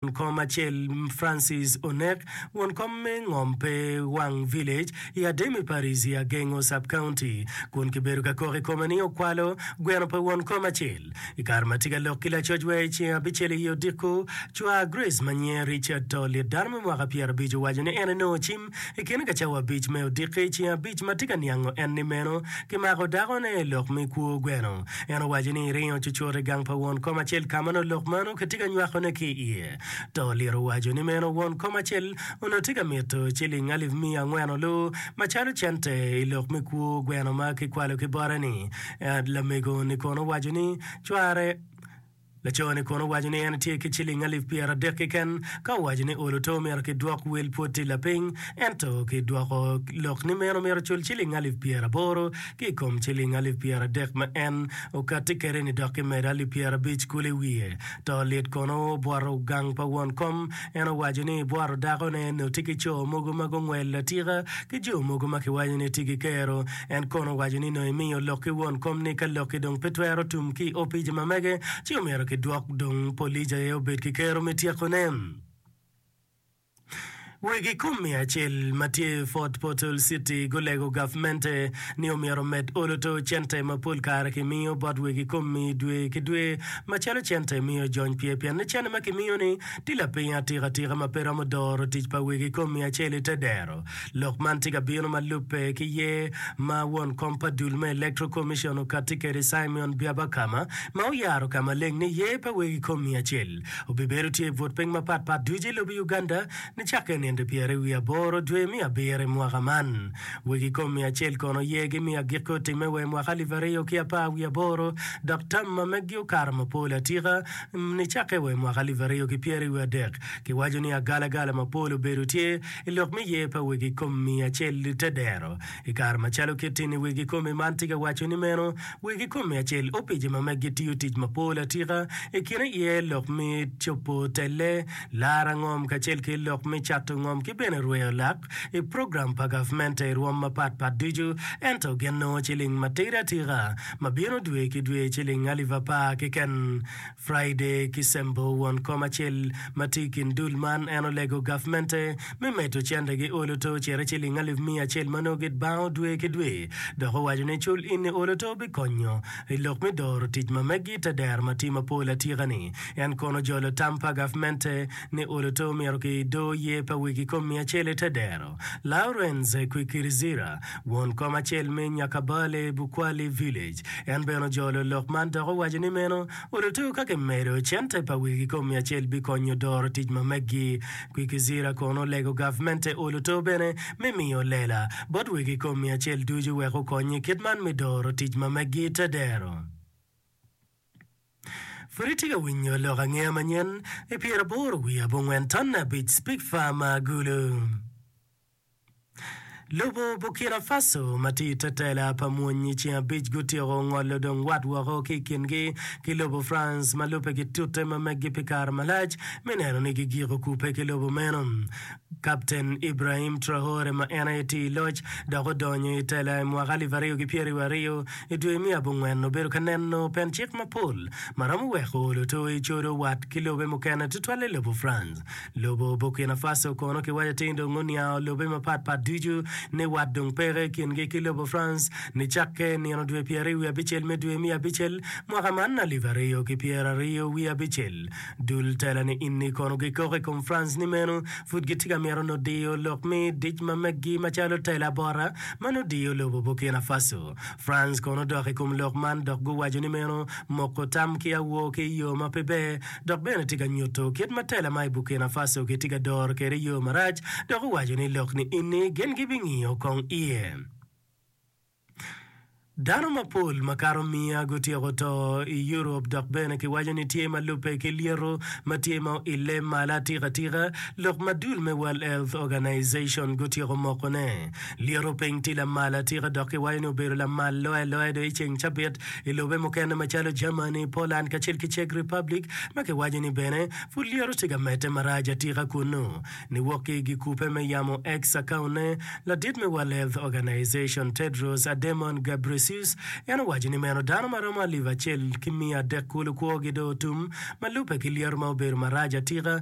Won kom acel Francis onek. Won kom me ngom pe wang village i Ademi parish i Agengo sub county kun kibedo ka kok i kome ni okwalo gweno pa won kom acel. I kare ma atye ka lok ki lacoc wa i ceng abicel i odiko, cwar Grace ma nyinge Richard to lit dano me mwaka pyerabic owaco ni en enongo cim I kine ka cawa abic me odiki, i ceng abic ma tye ka niango enni meno, kimako dakone i lok me kwo gweno. En owaco ni eringo cucut i gang pa won kom acel ka ma nongo lok meno kitye ka nywakone ki i iye. To oliro waco ni meno won kom acel onongo tye ka mito ciling alip miya angwen olu macalo cente i lok me kwo gweno ma kikwalo ki bote-ni. Lamego-ni kono owaco ni cware Laco-ni kono owaco ni en tye ki ciling alip pyeradek keken. Ka owaco ni olo to omyero kidwok wel pwod tye lapiny, ento kidwoko lok ni meno omyero ocul ciling alip pyeraboro ki i kom ciling alip pyeradek ma en okatti kwede-ni dok kimedo alip pyerabic kulu i wiye. To lit kono obwoto gang pa won kom En owaco ni bworo dakone onongo tye ki co mogo ma gungwelo atika ki jo mogo ma kiwaco ni tye ki kero. En kono owaco ni onongo emiyo lok ki won kom ni ka lok-ki dong pe twero tum ki i opic ma mege, ci omyero kidwok dong polic aye obed ki kero me tyekone. Wegi kom miya acel ma tye i Fort Portal City gulego gavmente ni omyero omed olo to cente ma pol kare kimiyo bot wegi kom-mi dwe ki dwe macalo cente miyo jony pye pien ni cente ma kimiyo-ni Ti lapiny atika tika ma pe romo doro tic pa wegi i kom miyo acel i te dero. Lok man tye ka bino ma lubbe ki yer ma won kom pa dul me Electoral Commission okatti kwede Simeon Byabakama ma oyaro ka maleng ni yer pa wegi i kom miyo acel obibedo tye i but piny mapat pat ducu i lobo Uganda nicakke i nino pyere wiye aboro dwe me abiro i mwaka man. Wegi i kom miyo acel kono yer gi miyo agikke otimme wa i mwaka alip aryo ki apar wiye aboro dok tam ma meggi okato mapol atika Nicakke wa i mwaka alip aryo ki pyeraryo wiye adek, kiwaco ni agalagala mapol obedo tye i lok me yer pa wegi kom miya acel te dero. I kare macalo kitti ni wegi komi man tye ka waco ni meno, wegi kom miya acel opice ma meggi tiyo tic mapol atika i kine iye lok me copo telle, laro angom kacel ki lok me cato ngom ki bene rweyo lak. i program pa gavmente i rwom mapat pat ducu, ento gin nongo ciling matidi atika ma bino dwe ki dwe ciling alip apar keken. Friday ki Sembo won kom acel ma tye i kin dul man en olego gavmente me medo cente gi olo to cito ciling alip miya acel ma nongo gibango dwe ki dwe dok owaco ni cul ini olo to bikonyo i lok mi doro tic ma meggi te dero ma tye mapol atika ni en kono jolo tam pa gavmente ni Oloto omito ki i doo yer pa wiki kom miya acel ete dero, Lawrence Kwikirizira, won kom acel me Nyakabale Bukwali Village, en bene ojolo lok man dok owaco ni meno Oloto ka ki medo cente pa wiki kom miya acel bi konyo doro tic ma meggi. Kwikizira kono olego gavment te Oloto bene me miyo lela bot wiki kom miya acel ducu wek okonye kit man me doro tic ma meggi ete dero. Pud itye ka winyo lok angeya manyen i pyeraboro wiye abongwen tonne abic Pig Farm Agulu. Lobo Burkina Faso ma tye i te tela pa mwony i ceng abic gutyeko ngolo dong wat woko ki i kingi ki lobo France ma lubbe gitute ma meggi pi kare malac me neno ni gigiko kubbe ki lobo meno. Kapten Ibrahim Traore ma en aye tii loc dok odonyo i tela i mwaka alip aryo ki pyeraryo aryo i dwe me abongwen obedo ka neno pen cik mapol ma romo weko luto i codo wat ki lobe mukene tutwalle lobo France. Lobo Burkina Faso kono kiwaco ni dong oniango lobe mapat pat ducu ni wat dong peke i kingi ki lobo France nicakke nino dwe pyeraryo wiye abicel me dwe me abicel mwaka man alip aryo ki pyeraryo wiye abicel. Dul tela ni inni kono gikok i komfranc ni meno pud gitye ka mito nut diyo lok me dic ma meggi macalo tela bota ma nut diyo lobo Burkina Faso. France kono odok i kom lok man dok guwaco ni meno moko tam ki awor ki i yo ma pe ber dok bene tye ka nyuto kit ma tela ma i Burkina Faso kitye ka doro kwede i yo marac dok owaco ni lok ni inni gin gibingiyo kong iye. Dano mapol makato miya gutyeko to i Europe dok bene kiwaco ni tye ma lubbe ki lyeto ma tye ma oile malo atikatika, lok ma dul me World Health Organization gutyeko mokone. Lyeto piny tye lamal atika dok kiwaco ni obedo lamal loya loya do i ceng cabit i lobe mukene macalo Germany, Poland kacel ki Czech Republic ma kiwaco ni bene pud lyeto tye ka medde marac atika kunnu. Niwok ki i gikupe me yamo X akaonne, ladit me World Health Organization, Tedros Adhanom Ghebreyesus, en owaco ni meno dano ma romo alip acel ki miya adek kulu kwogi dong otum ma lubbe ki lyeto ma obedo marac atika,